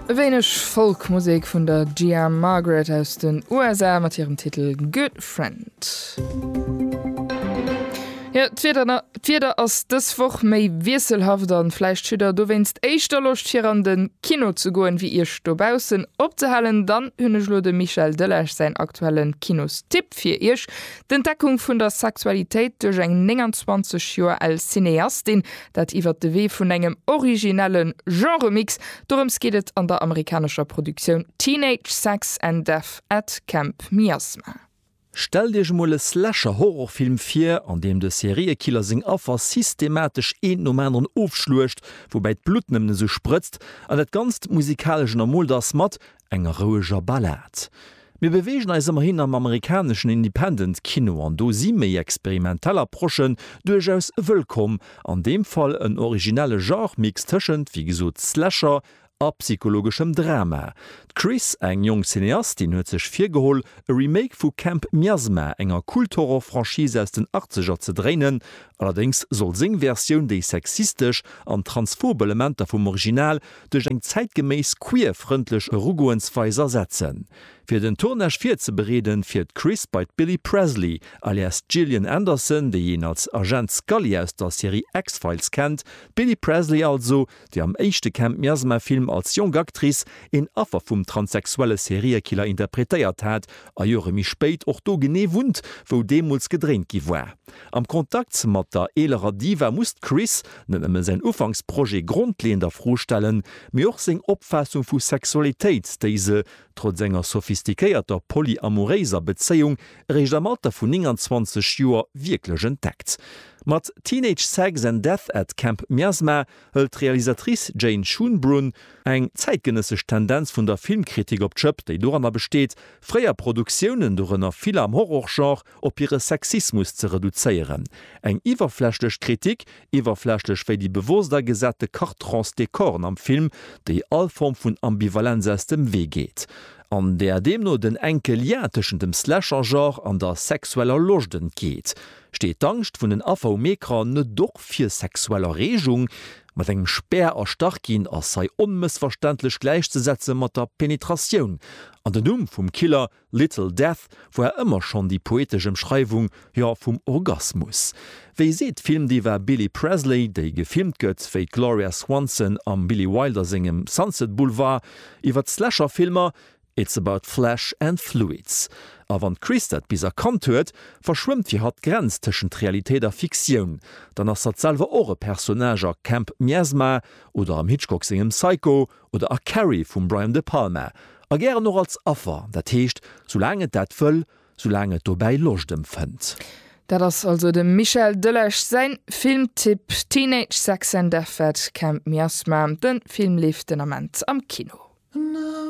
E wéineg Folk-Musek vun der Gia Margaret aus den USA mat hirem Titel Good Friend. Jo, d'Wieder ass dës Woch méi wiesselhaft an vläicht hutt der dowéinst éischter Loscht fir an den Kino ze goen wéi iech dobaussen opzehalen. Dann hunn ech elo dem Michel Delage säin aktuellen Kinostipp fir iech, D'Entdeckung vun der Sexualitéit duerch eng 29 Joer al Cineastin, Dat iwwert de Wee vun engem originellen Genre-Mix. Dorëms geet et an der amerikanescher Produktioun Teenage Sex and Death at Camp Miasma. Stellt iech emol e Slasher-Horrorfilm vir, an deem de Seriekiller seng Affer systematesch eent nom aneren ofschluecht, woubäi d'Blutt nëmmen esou sprëtzt, an dat Ganzt musikalesch ënnermoolt ass mat Enger roueger Ballad. Mir beweegen eis ëmmerhin am amerikaneschen Independent Kino an do si méi experimentell Approchen duerchaus wëllkomm, an deem Fall en originelle Genre-Mix tëschent, wéi gesot, Slasher a psychologeschem Drama. D'Chris, eng jonk Cineastin, huet sech virgeholl, e Remake vu Camp Miasma, enger Kult-Horror-Franchise aus den Achtzeger, ze dréinen. Allerdéngs soll seng Versioun déi sexistesch an transphob Elementer vum Original duerch eng zäitgeméiss queer-frëndlech Erugoensweis ersetzen. Fir den Tournage virzebereeden, fiert d'Chris bei d'Billie Presley, alias Gillian Anderson, déi een als Agent Scully aus der Serie X-Files kennt, d'Billie Presley also, déi am éischte Camp Miasma-Film als jonk Actrice een Affer vum transsexuelle Seriekiller interpretéiert hat a Jore méi spéit och do genee wunnt, wou deemools gedréint gi war. Am Kontakt mat der eelerer Diva muss d'Chris, Net nëmme säin Ufanksprojet grondleeënd a Fro stellen, mee och seng Opfaassung vu Sexualitéit, déi se, trotz enger sophistiquéierter polyamoréiser Bezéiung, eréischt am Alter vun 29 Joer wierklech entdeckt. Mat Teenage Sex and Death at Camp Miasma hëlt d'Realisatrice Jane Schoonbrun eng zäitgenëssesch Tendenz vun der Filmkritik op d'Schëpp, déi doranner besteet, fréier Produktiounen, dorënner vill am Horrorgenre, op hire Sexismus ze reduzéieren. Eng iwwerflächlech Kritik, iwwerflächlech wéi déi bewosst agesate Cartrons de corn am Film, déi all Form vun Ambivalenz aus dem Wee geet. An där deemno den enke Lien tëschent dem Slasher-Genre an der sexueller Loscht entgeet. Steet d'Angscht vun den Affer um Ecran net och fir sexuell Erregung? Mat engem Spär erstach ginn ass hei onmëssverständlech gläichzesetze mat der Penetratioun. An den Numm vum Killer Little Death war ëmmer schonn déi poetesch Emschreiwung, jo, vum Orgasmus. Wéi seet d'Filmdiva Billie Presley, déi gefilmt gëtt wéi d'Gloria Swanson am Billy Wilder sengem Sunset Boulevard iwwert d'Slasher-Filmer, It's about flesh and fluids. A wann d'Chris dat bis erkannt huet, verschwëmmt fir hatt d'Grenz tëschent Realitéit a Fiktioun, dann ass hatt selwer och e Personnage a Camp Miasma oder am Hitchcock sengem Psycho, oder a Carrie vum Brian De Palma, a gären och als Affer, dat heescht, soulaang et dat wëll, soulaang et dobäi Loscht empfënnt. Dat ass also dem Michel Delage säin Filmtipp, Teenage Sex and Death at Camp Miasma. Den Film leeft den Ament am Kino.